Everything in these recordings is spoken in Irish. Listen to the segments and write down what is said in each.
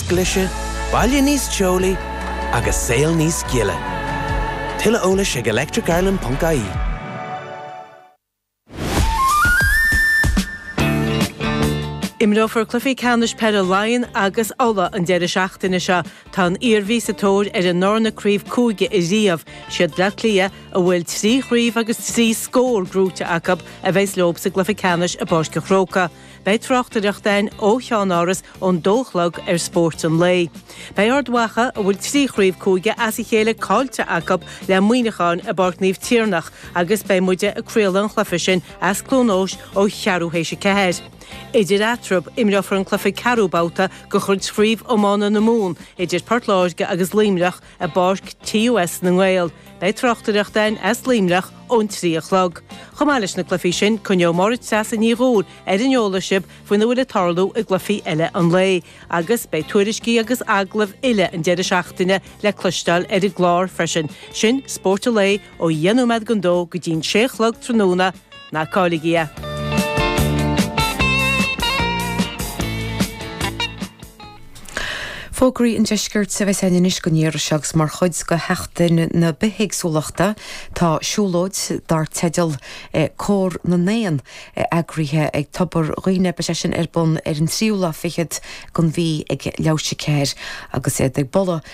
glaise, baile níos teolaí agus saol níos gile. Tuilleadh eolais ag electricireland.ie. Imreofar cluichí ceannais peile Laighean agus Uladh an deireadh seachtaine seo. Tá an Iarmhí sa tóir ar a ndarna craobh cúige i riamh. Siad Bleá Cliath, a bhfuil trí chraobh agus trí scór gnóite acu, a bheas leob sa gcluiche ceannais i bPáirc an Chrócaigh. Beidh tráchtaireacht ann ó cheannáras ón dó a chlog ar Spórt an Lae. Beidh Ard Mhacha, a bhfuil trí chraobh cúige as a chéile caillte acu, le Muineachán i bPáirc Naomh Tiarnach agus beidh muide ag craoladh an chluife sin as Cluain Eois ó cheathrú théis a ceathair. Idir eatarthu, imreofar an cluife ceathrú babhta de chuid Chraobh Iomána na Mumhan idir Port Láirge agus Luimneach, i bPáirc TUS na nGael. Beidh tráchtaireacht ann as Luimneach ón trí a chlog. Chomh maith leis na cluifí sin, coinneoidh Máire Treasa Ní Dhubhghaill ar an eolas sibh faoina bhfuil ag tarlú i gcluifí eile an lae agus beidh tuairiscí agus agallaimh uile an deireadh seachtaine le cloisteáil ar an gclár freisin. Sin Spórt an Lae ó dheich nóiméad don dó go dtí'n sé a chlog tráthnóna ná cailligí é. Fógraí an Deiscirt a bheas ann anois don iarraidh seo agus mar chuid de Sheachtain na Bithéagsúlachta tá siúlóid dar teideal Cór na nÉan eagraithe ag Tobar Dhuibhne. Beidh sé sin ar bun ar an tríú lá fichead den mhí ag leathuair théis a ceathair agus iad ag bualadh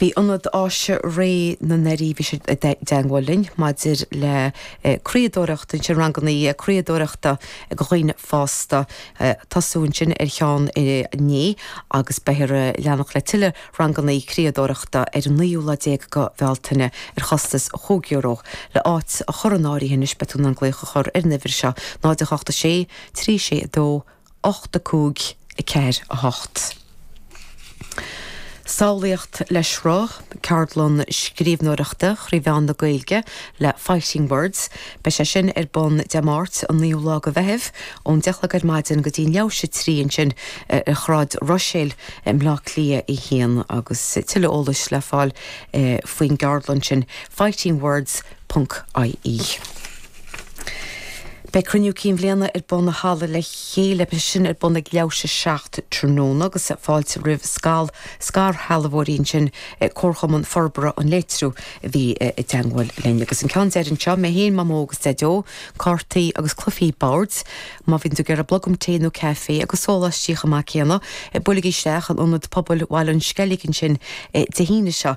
Bhí Ionad Áise Réidh na nDoirí, bhí sé i dteagmháil linn maidir le criadóireacht ansin, ranganna criadóireachta do dhaoine fásta, tosaíodh ansin ar cheann inné agus beifear ag leanacht le tuilleadh ranganna criadóireachta ar an naoú lá déag de Bhealtaine ar chostas chúig euro. Le áit a chur in áirithe anois beidh tú in ann glaoch a chur ar an uimhir seo, 0, 8, 6, 3, 6, 2, 8, 5, 4, 8. Samhlaíocht le Sruth, Ceardlann Scríbhneoireachta thrí mheán na Gaeilge le Fighting Words. Beidh sé sin ar bun Dé Máirt an 9ú lá de Mheitheamh ón 10 a chlog ar maidin go dtí an leathuair théis a 3 ansin ar Shráid Ruiséil i mBleá Cliath 1 agus tuilleadh eolais le fáil faoin gceardlann sin Fighting Words, ie. Beidh Cruinniú Cinn Bhliana ar bun i Halla le Chéile, beidh sé sin ar bun ag leathuair théis a seacht tráthnóna agus fáilte roimh scal scairshealbhóirí ansin, Comharchumann Forbartha an Leith Triúigh a bhí i dteangmháil linn. Agus an ceann deiridh anseo, mé féin, Mamó agus Daideo, cártaí agus cluifí boird, má bhíonn tú ag iarraidh blogam tae nó caife agus sóláistí chomh maith céanna, buailigí isteach in Ionad Pobail Bhaile an Sceilg ansin Dé hAoine seo.